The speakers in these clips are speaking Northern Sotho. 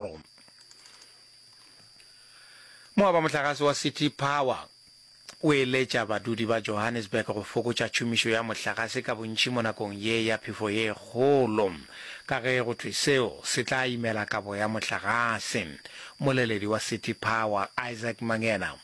Rome. Mowa wa mohlagase wa City Power o eletša badudi ba Johannesburg go fokotša tšhomišo ya mohlagase ka bontši mo nakong ye ya phefo ye kgolo, ka ge go thwe seo se tla imela kabo ya mohlagase. Moleledi wa City Power, Isaac Mangena,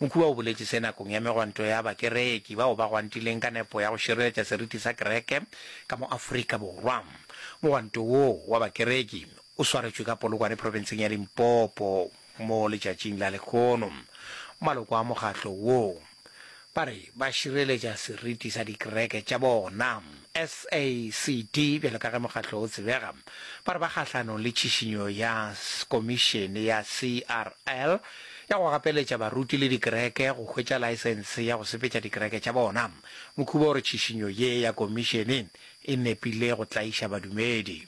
Mokhuba o boletše se nakong ya megwanto ya Bakereki bao ba gwantileng ka nepo ya go šireletša seriti sa Kereke ka mo Afrika Borwa. Mogwanto woo wa Bakereki o swaretšwe ka Polokwane profenseng ya Limpopo mo letšatšing la lehono. Maloko a mokgatlo woo ba re ba šireletša seriti sa dikereke tša bona. SACD, bjalo ka ge mokgatlo o tsebega, ba re ba kgahlanong le tšhišinyo ya Komišene ya CRL ya go gapeletša baruti le dikereke go hwetša laesense ya go sepetša dikereke tša bona. Mokhuba o re tšhišinyo ye ya Komišene e nepile go tlaiša badumedi.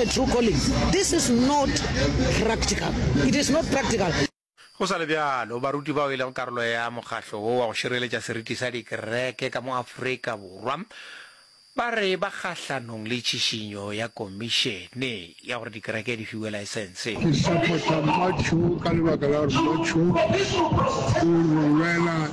a true calling this is not practical it is not practical. Go sa le bjalo, baruti bao e lego karolo ya mokgahlo wo wa go šireletša seriti sa dikereke ka mo Afrika Borwa ba re ba kgahlanong le tšhišinyo ya komišene ya gore dikereke di fiwe laesense. Ke support-a Mma Cho ka lebaka la gore Mma Cho o re lwela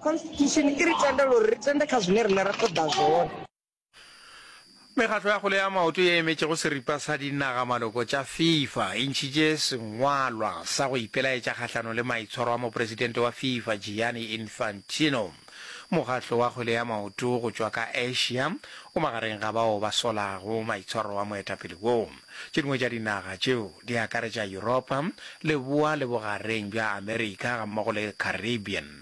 Constitution i ri tendela uri ri tende kha zwine riṋe ra ṱoḓa zwone. Mekgatlo ya kgwele ya maoto ye e emetšego seripa sa dinaga-maloko tša Fifa e ntšhitše sengwalwa sa go ipelaetša kgahlanong le maitshwaro a mopresidente wa Fifa Gianni Infantino. Mokgatlo wa kgwele ya maoto go tšwa ka Asia o magareng ga bao ba solago maitshwaro a moetapele wo. Tše dingwe tša dinaga tšeo di akaretša Yuropa, Leboa le Bogareng bja Amerika gammogo le Caribbean.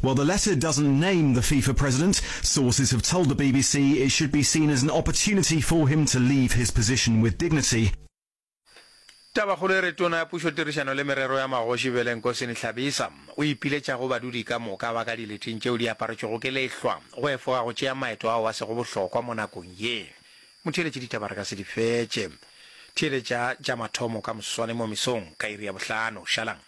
While the letter doesn't name the FIFA president, sources have told the bbc it should be seen as an opportunity for him to leave his position with dignity. Tabakgolo e re Tona ya Pušo Tirišano le Merero ya Magoši Bele Nkosini Hlabisa o ipiletša go badudi ka moka ba ka dileting tšeo di aparetšwego ke lehlwa go efoga go tšea maeto ao a sego bohlokwa mo nakong ye. Motheeletše ditaba re ka se di fetše. Theeletša tša mathomo ka moswane mo mesong ka iri ya bohlano. Šalang.